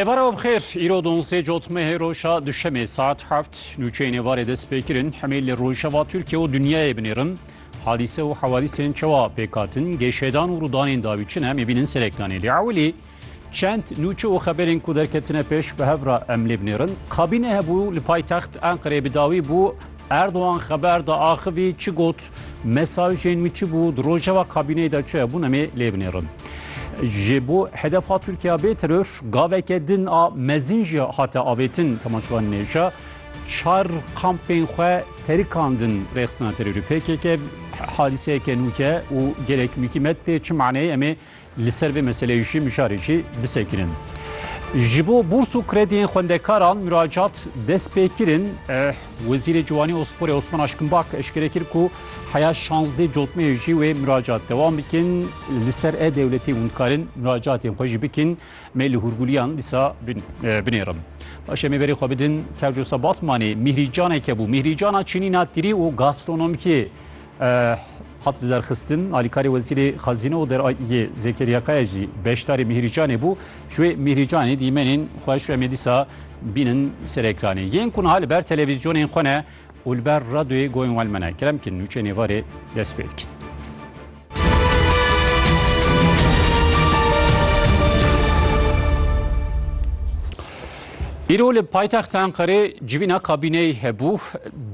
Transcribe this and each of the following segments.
Êvara bixêr îro donzê cotmehê roja duşemê saet heft nûçeyên êvarê dest pê kirin hemê li rojeva Tirkiye û dinyayê binêrin hadîse û hewadîsên çewa pêkhatin gêşêdan û rûdanên dawî çin em ê bînin serekdanê lê ewilî çend nûçe û xeberên ku derketine pêş bi hev re em lê binêrin kabîne hebû li paytext Enqerê bi dawî bû Erdogan xeber da axivî çi got Mesajên wî çi bû? Di rojeva kabîneyê de çi hebûn em ê lê binêrin. Ji bo hedef hat Tirkiya bê teror gaveke din a mezin jî hate avêtin temaşevanên êrişa. Çar kampên xwe terikandin rêxistina terorî PKK hadîseyeke nûke û gelek mûkîmet tê çi maneyê em ê Li ser vê meseleyê jî mijarê jî bisekirin. Ji bo bûrs û krediyên xwendekaran muracat dest pê kirin, Wezîrê Ciwanî û Sporê Osman Aşkinbak eşkere kir ku heya şazdeh cotmeyê jî wê muracat dewam bikin. Li ser e-dewletê hûn dikarin muracatên xwe jî bikin. Me li hûrgûliyan dîsa binêrin. Baş e me berê xwe bidin Kevcosa Batmanê. Mîhrî Caneke bû. Mîhrî Cana çinîna tîrî û gastronomikiyê. Hat derxistin alîkarê wezîrê xezîne û derayiyê Zekeriya Kaya jî beşdarê Mîhrîcanê bû. Ji wê Mîhrîcanê dîmenên xwe ji em dîsa bînin ser ekranê. Yên ku niha li ber televîzyonên xwe ne û li ber radyoyê goyên wan me ne. Kerem kî nûçeyên êvarê dest pê dikin. Îro li paytexta Enqerê civîna kabîneyê hebû.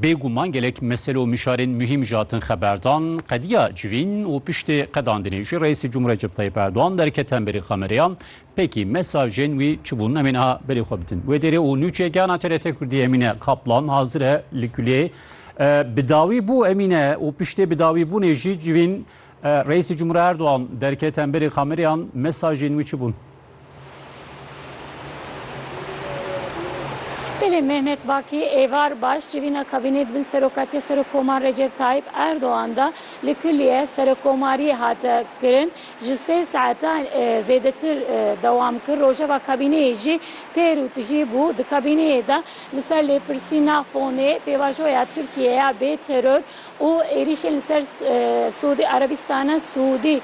Bêguman gelek mesele û mişarên muhîm ji hatin xeberdan. Qediya civîn û piştê qedandinê jî Reîsê Cumhurê Recep Tayyip Erdogan derket hemberî kameraya. Pekî mesajên wî çi bûn? Em ê niha berê xwe bidin wê dêrê û nûçeyê gihana TRT Kurdî Emîne Kaplan hazir e li Kuleyê. Bi dawî bû Emîne û piştê bi dawî bûnê jî civîn Reîsê Cumhurê Erdogan derket hemberî kamerayan mesajên wî çi bûn? Belê Mehmet Bakî êvar baş civîna kabînê di bin serokatîya Serokkomar Recep Tayyîp Erdogan de li kulîye Serokkomariyê hat kirin. Ji sê saetan zêdetir dewam kir. Rojeva kabîneyê jî têr û tijî bû. Di kabîneyê de li ser lêpirsîna fonê pêvajoya Tirkiyê ya bê teror, û êrîşên li ser Siûdî Erebîstana Siûdî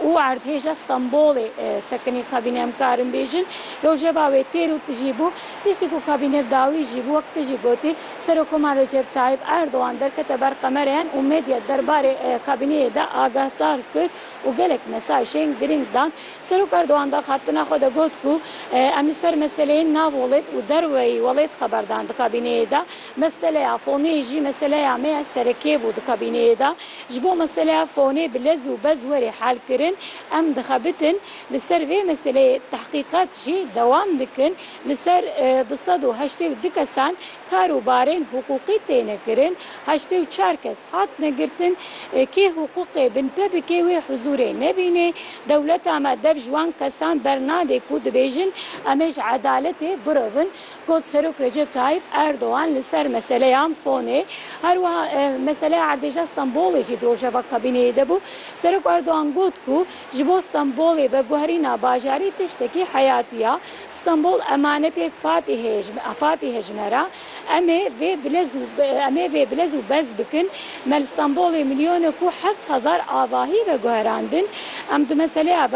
û erdhêja Stenbolê sekinî kabîne em karin bêjin rojeva wê têr û tijî bû piştî ku kabîne dawî jî bû wek tu jî gotî Serokoman Recep Tayyîp Erdogan derkete ber qemereyan û medya derbarê kabîneyê de agahdar kir û gelek mesajên girîng dan Serok Erdogan daxabtina xwe de got ku em li ser meseleyên nav welêt û derweyî welêt xeberdan di kabîneyê de Meseleya fonê jî meseleya me ya serekê bû di kabîneyê de. Ji bo meseleya fonê bi lez û bez were helkirin, em dixebitin li ser vê meseleyê tehqîqat jî dewam dikin. Li ser du sed û heştê û du kesan kar û barên hiqûqî têne kirin. Heştê û çar kes hatine girtin. Kê hiqûqê binpe bike wê huzûrê nebînê. Dewleta me dev ji wan kesan bernade ku dibêjin em ê ji edaletê birevin. Got Serok Recep Tayyip Erdogan li ser meseleya fonê her wiha meseleya erdêja Stenbolê jî di rojeva kabîneyê de bû. Serok Erdogan got ku ji bo Stenbolê veguherîna bajarî tiştekî heyatî ya. Stenbol emanetê Fatîhe ji me ra. Em ê vê bilez û em ê vê bilez û bez bikin. Me li Stenbolê milyonek û heft hezar avahî veguherandin. Em di meseleya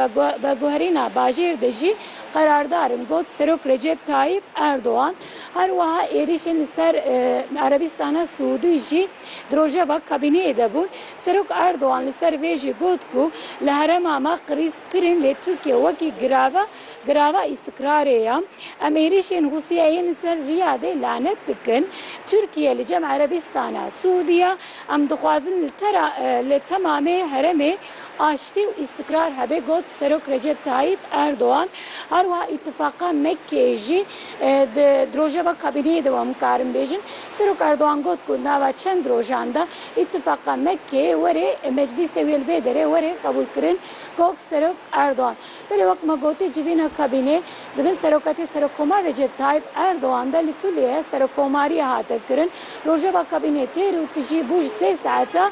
veguherîna bajêr de jî Qerardarin got Serok Recep Tayyip Erdogan her wiha êrîşên li ser Erebîstana Siûdî jî di rojeva kabîneyê de bûn. Serok Erdogan li ser vê jî got ku li herêma me krîz pir in lê Tirkiye wekî girava girava îstikrarê ye. Em êrîşên Rûsyayê yên li ser Riyadê lanet dikin. Tirkiye li cem Erebîstana Siûdî ye. Em dixwazin li li temamê herêmê. aştî û îstikrar hebe got Serok Recep Tayyîp Erdogan. Her wiha Îtifaqa Mekkeyê jî di di rojeva kabîneyê de wan bikarin bêjin. Serok Erdogan got ku di nava çend rojan de Îtifaqa Mekkeyê werê meclîsê wê li vê derê werê qebûlkirin got Serok Erdogan. Belê wek me gotî civîna kabînê di bin seroketê Serokkomar Recep Tayyîp Erdogan de li Kulîye Serokkomariyê hate kirin. Rojeva kabînê têr û tijî bû ji sê saeta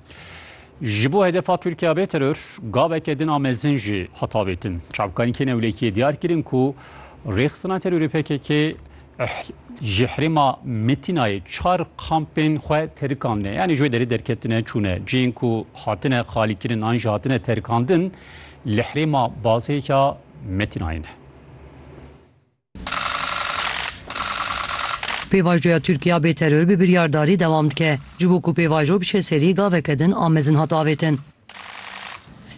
Ji bo hedefa Tirkiya bê teror gaveke din a mezin jî hat avêtin. Çavkanîkên ewlekiyê diyar kirin ku rêxistina terorê PKK ji herêma Metinayê çar kampên xwe terikandine. Yanî ji wê derê derketine çûne. Cihên ku hatine xalîkirin an jî hatine terikandin li herêma Bazê ya Metinayê ne. Pêvajoya Tirkiya bê teror bi biryardarî dewam dike. Ji bo ku pêvajo biçe serî gaveke din a mezin hat avêtin.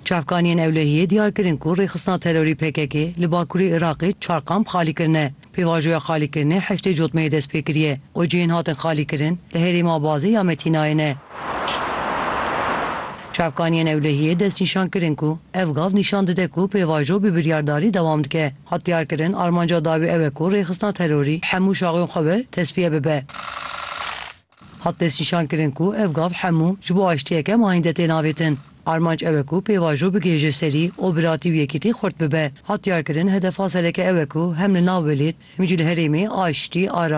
Çavkaniyên ewlehiyê diyar kirin ku rêxistina terorî pkk li bakurê Iraqê çar kamp xalî kirine. Pêvajoya xalîkirinê heştê cotmeyê dest pê kiriye û cihên hatin xalîkirin li herêma Abazê ya Metînayê ne. Çavkaniyên ewlehiyê destnîşan kirin ku ev gav nîşan dide ku pêvajo bi biryardarî dewam dike. Hat diyarkirin, armanca dawî ew e ku rêxistina terorî bi hemû şaxên xwe ve tesfiye bibe. Hat destnîşankirin ku ev gav hemû ji bo aştiyeke mayînde tên avêtin. Armanc ew e ku pêvajo bigihêje serî û biratî û yekîtî xurt bibe. Hat diyarkirin, hedefa sereke ew e ku hem li nav welêt hem jî li herêmê aştî, aramî,